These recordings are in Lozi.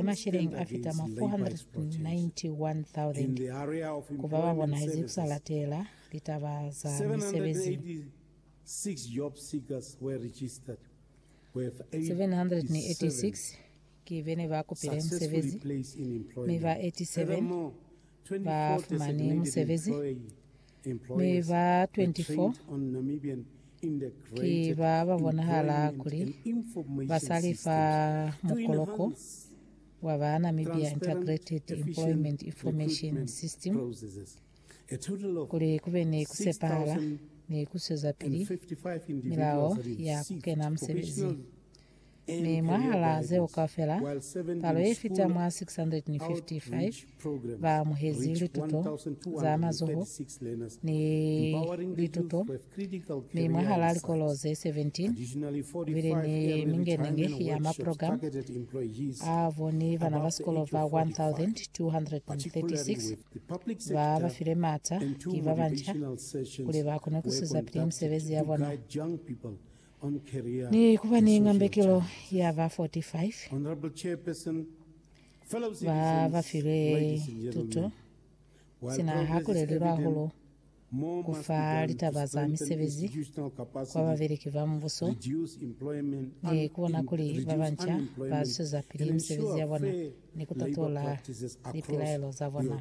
ni masheleng a fita mwa 491,000 ku ba ba bonahezi ku sa latela litaba za misebezi. 786 ki be ne ba kupile musebezi, mi ba 87 ba fumani musebezi. Mi ba 24 ki ba ba bonahala kuli ba sa li fa mukoloko wa ba Namibia Integrated Employment Information System kuli ku be ni ku sepahala ni ku zwezapili milao ya ku kena musebezi. Mi mwahalaa zeo kaufela, palo yefita mwa 655 ba amuhezi lituto za mazoho ni lituto, mi mwahalaa likolo ze 17 kubile ni mingenenge ya maprogram a bo ni bana ba sikolo ba 1,236 ba ba file maata ki babanca kuli ba kone kusuza pili misebezi ya bona. Ni ku ba ni ngambekelo ya ba 45 ba ba filwe tuto, sina ha ku lelilwe hahulu ku fa litaba za misebezi kwa babeleki ba mubuso ni ku bona kuli ba banca ba zwezapili misebezi ya bona ni ku tatola lipilaelo za bona.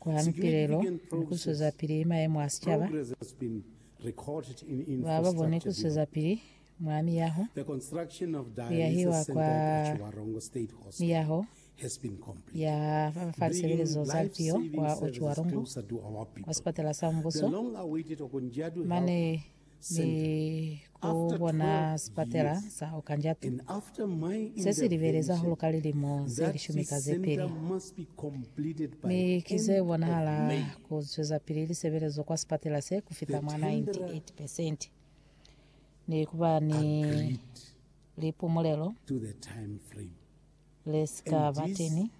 Kuha mipilelo ni kuswezapili mayemo a sicaba, ba ba boni kuswezapili mwa miyaho, kuyahiwa kwa miyaho ya fa lisebelezo za lipio kwa Otjiwarongo, kwa sipatala sa mubuso, mane ni ku bona sipatela sa Okanjatu se si libele za huluka lilimo ze lishumi ka ze pili, mi ki ze bonahala ku zwezapili lisebelezo kwa sipatela se ku fita mwa 98 percent, ni ku ba ni lipumulelo le si ka ba teñi,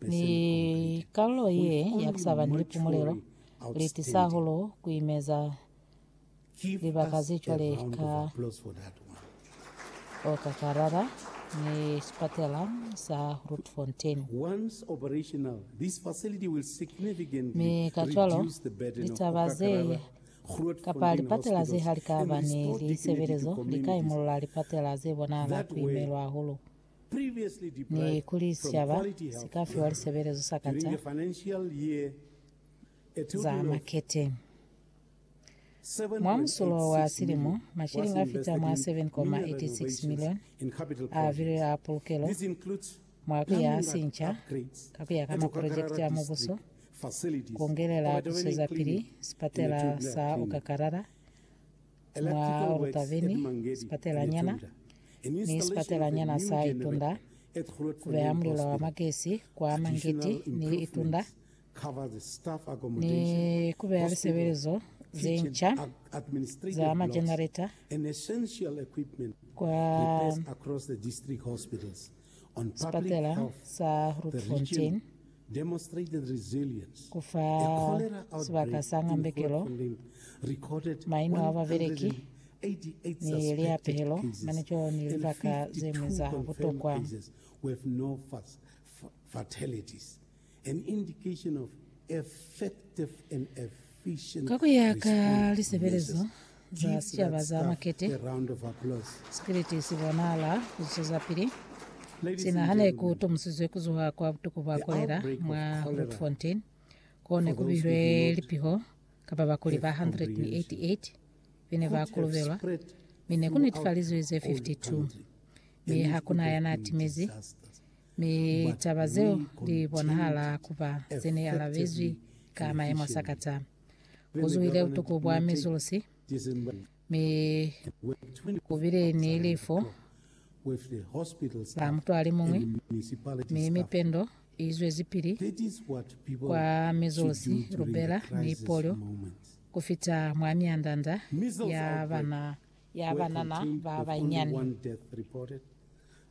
mi kalulo ye ya ku sa ba ni lipumulelo li tisa hahulu ku imeza libaka ze cwale ka Okakarara ni sipatela sa Grootfontein, mi kacwalo litaba ze Kapa lipatela ze ha li ka ba ni lisebelezo li ka imolola lipatela ze bonahala ku imelwa hahulu, ni kuli sicaba si ka fiwa lisebelezo sa kata za makete. Mwa musulo wa silimo, mashilingi a fita mwa 7.86 milioni a vilwe a pulukelo Mwa ku ya sinca ka ku ya ka maprojekiti a mubuso, ku ngelela ku swezapili sipatela sa Okakarara, mwa Olutaveni, sipatelanyana ni sipatelanyana sa Itunda, ku beha mulilo wa magesi kwa Mangiti ni Itunda, ni ku beya lisebelezo ze nca za majenareta kwa sipatela sa Grootfontein, ku fa sibaka sa ngambekelo, maino a babeleki, ni liyapehelo mane cwalo ni libaka ze ñwi za butokwa. Ka ku ya ka lisebelezo za sicaba za makete, sikiliti si bonahala ku zwezapili. Sina ha ne ku tomusizwe ku zuha kwa butuku bwa kolela mwa Grootfontein, ko ne ku bihilwe lipiho ka babakuli ba 188 be ne ba kolobelwa, mi ne ku netifalizwe ze 52, mi ha ku na ya n'a timezi. Mi litaba zeo li bonahala ku ba ze ne alabezwi ka mayemo a sa kata. Ku zuhile butuku bwa mizulusi, mi ku bile ni lifu la mutu a li muñwi, mi mipendo i zwezipili kwa mizulusi, lubela, ni polio, ku fita mwa mianda-nda ya bana, ya banana ba banyani.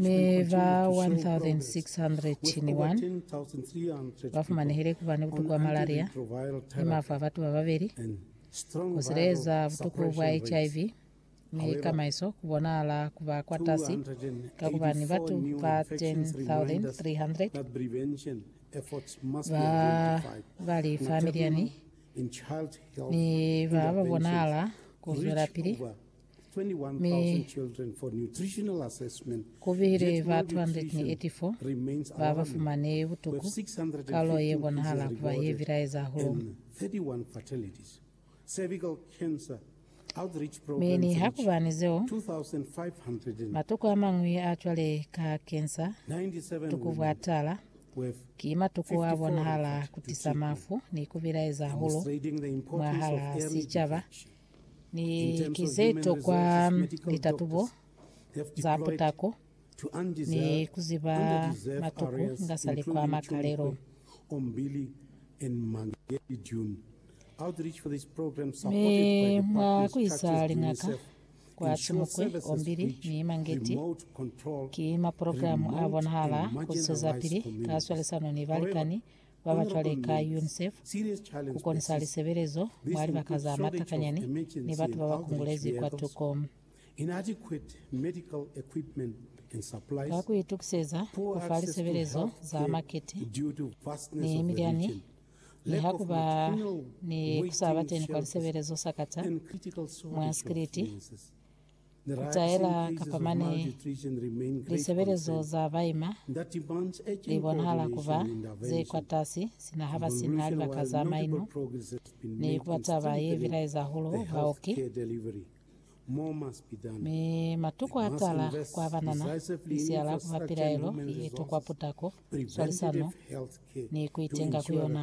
mi ba 1,601 ba fumanehile ku ba ni butuku bwa malaria ni mafu a batu ba babeli. Ku sileleza butuku bwa HIV ni kamaiso ku bonahala ku ba kwatasi ka ku ba ni batu ba 10,300 ba ba li familiyani ni ba ba bonahala ku zwelapili mi ku bile ba 284 ba ba fumane butuku, palo ye bonahala ku ba ye bilaeza hahulu. Mi niha ku ba ni zeo, matuku a mañwi a cwale ka kensa, butuku bwa tala, ki matuku a bonahala ku tisa mafu ni ku bilaeza hahulu mwahal'a sicaba. Ni ki ze tokwa litatubo za putako ni ku ziba matuku inga sa li kwa makalelo. Mi mwa ku isa liñaka kwa Simukwe, Ombili ni Mangeti, ki maprogramu a bonahala ku zwezapili ka swalisano ni balikani ba ba cwale ka UNICEF ku konisa lisebelezo mwa libaka za matakanyani ni batu ba ba kungulezi kwatuko. Ka ku itukiseza ku fa lisebelezo za makiti ni milyani mi ha ku ba ni ku sa ba teni kwa lisebelezo sakata mwa sikiliti, Ku taela kapa mane lisebelezo za baima li bonahala ku ba ze kwatasi sina ha ba si na libaka za maino, ne ku ba taba ye bilaeza hahulu baoki. Mi matuku a tala kwa banana misiala ku ba pilaelo ye tokwa putako, swalisano, ni ku itenga ku yona.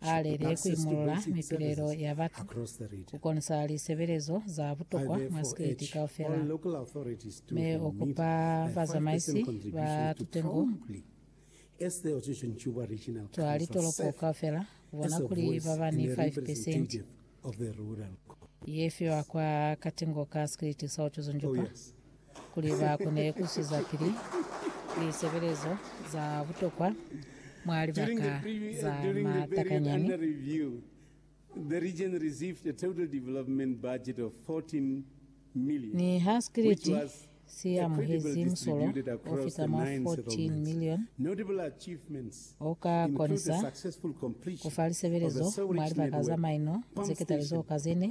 a lele ku imolola mipilelo ya batu, ku konisa lisebelezo za butokwa mwa sikiliti kaufela, mi u kupa bazamaisi ba tutengo twa litoloko kaufela ku bona kuli ba ba ni 5 pesenti of the rural co. Ye fiwa kwa Katingo ka Sikiliti sa Utuzunjupa kuli ba kone ku zwezapili lisebelezo za butokwa mwa libaka za matakanyani. During the period under review, the region received a total development budget of 14 Niha Sikiliti si amuhezi musolo o fita mwa 14 milioni, u ka konisa ku fa lisebelezo mwa libaka za maino ze ketali zeo ka ze ne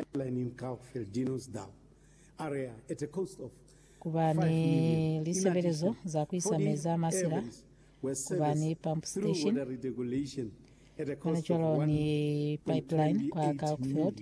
ku ba ni lisebelezo za ku isa mezi a masila, ku ba ni pump station, hanacwalo ni pipeline kwa Kalkfeeld.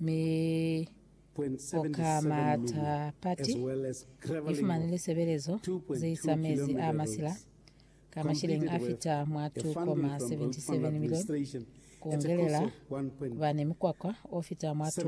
mi o ka mata pati, i fumanile sebelezo ze isa mezi a masila ka mashileng a fita mwa 2.77 milioni, ku ongelela ku ba ni mukwakwa o fita mwa 2.